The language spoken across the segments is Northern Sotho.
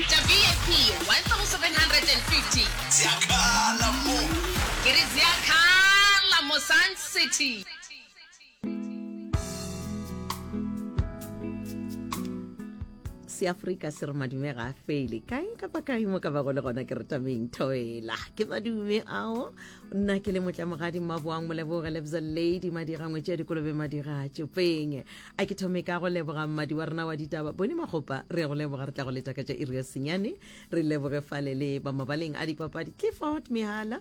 Tša vip 1750. Tša kala mo. Ke re tša kala mo Sun City. seafrika se re madume ga a fele kae kapa kae mo ka bago le gona ke re tameng thoela ke madume ao nna ke le motlamogadi mmaboang moleboge lebza lady madirangwe tša dikolobe madira tšopeng a ke thome ka go leboga mmadi wa rena wa ditaba bone magopa re go leboga re tla go letša ka tša iri ya senyane re leboge fale le ba mabaleng a dipapadi clifford mehala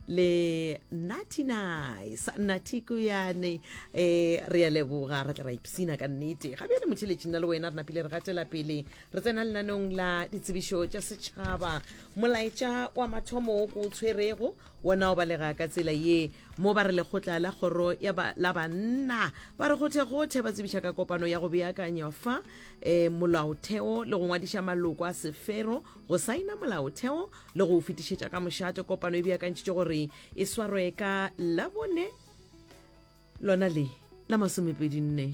le natty nice natty kuyane eh re ya leboga re tla ra ipsina ka nnete ga bjale motheletšing na le wena re napile re gatela pele re tsena lenanong la ditsebišo tša setšhaba molaetša wa mathomo o ko o tshwerego Wona o balega ka tsela ye mo ba re lekgotla la kgoro ya ba, la banna ba re gothegothe ba tsebiša ka kopano ya go beakanya fa e, molaotheo le go ngwadiša maloko a sefero go saina molaotheo le go o fetišetša ka mošate. Kopano e beakantšitše gore e swarwe ka Labone lona le la masomepedi nne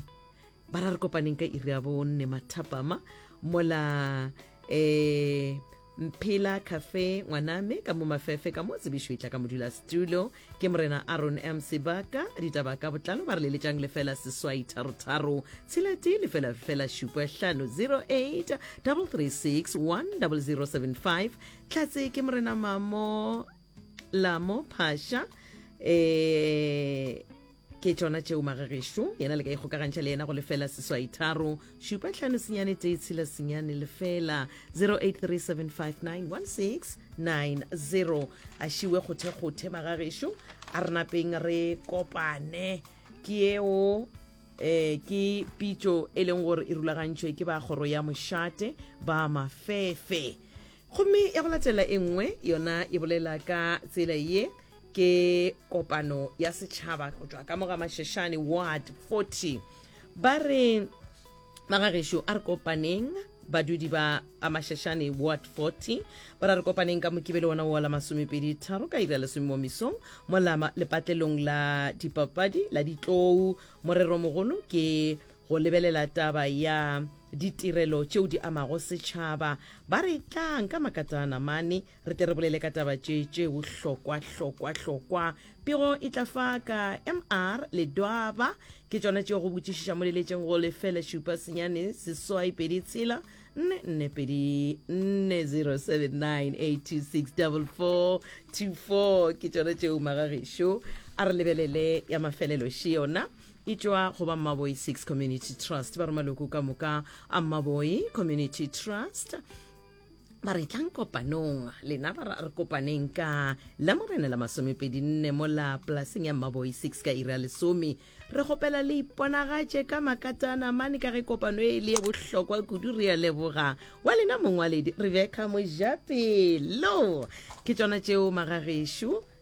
ba ra re kopaneng ka iri ya bonne mathapama mola eh mphela cafe ngwaname ka mo mafefe ka mo tsebišo e tla ka modula stulo ke morena aron m sebaka ditaba ka botlalo ba re leletšang lefela seswai tharotharo tshelatee lefela fela šupa hlano 08 336 10075 tlatse ke morena mamo la mo phasha eh ke tšona tšeo magagešo yena le ka ikgokagantšha le yena go lefela seswai tharo šupa tlhano senyane tee tshela senyane lefela 0837591690 a šiwe kgothekgothe magagešo a re napeng re kopane ke eo eh ke pitšo e leng gore e rulagantšhwe ke ba kgoro ya mošate ba mafefe Gomme ya go latela e nngwe yona e bolela ka tsela ye, ke kopano ya setšhaba go tšwa ka mo ga Masheshane Ward 40. Ba re, Magagešo, a re kopaneng badudi ba ba Masheshane Ward 40, ba ra re kopaneng ka Mokibelo wona wo la masomepedi tharo ka iri ya lesome mo mesong mo la lepatlelong la dipapadi la Ditlou. Morero mogolo ke Go lebelela taba ya ditirelo tšeo di amago setšhaba, ba re tlang ka makatana namane re tle re bolele ka taba tše tšeo hlokwa hlokwa hlokwa. Pego e tla fa ka MR Ledwaba ke tšona tšeo go botšišiša mo leletšeng go lefele šupa senyane seswai pedi tshela nne nne pedi nne 0798264424 ke tšona tšeo magagešo a re lebelele ya mafelelo še yona e tšwa go ba mmaboi six community trust ba re maloko ka moka a mmaboi community trust ba re tlang kopanong lena ba re kopaneng ka la morena la masomepedi nne mo la polaseng ya mmaboi six ka ira lesome re kgopela le iponagatše ka makatana mane ka ge kopano e le ye bohlokwa kudu re ya leboga wa lena mongwaledi rebecca mojapelo ke tsona tšeo magagešo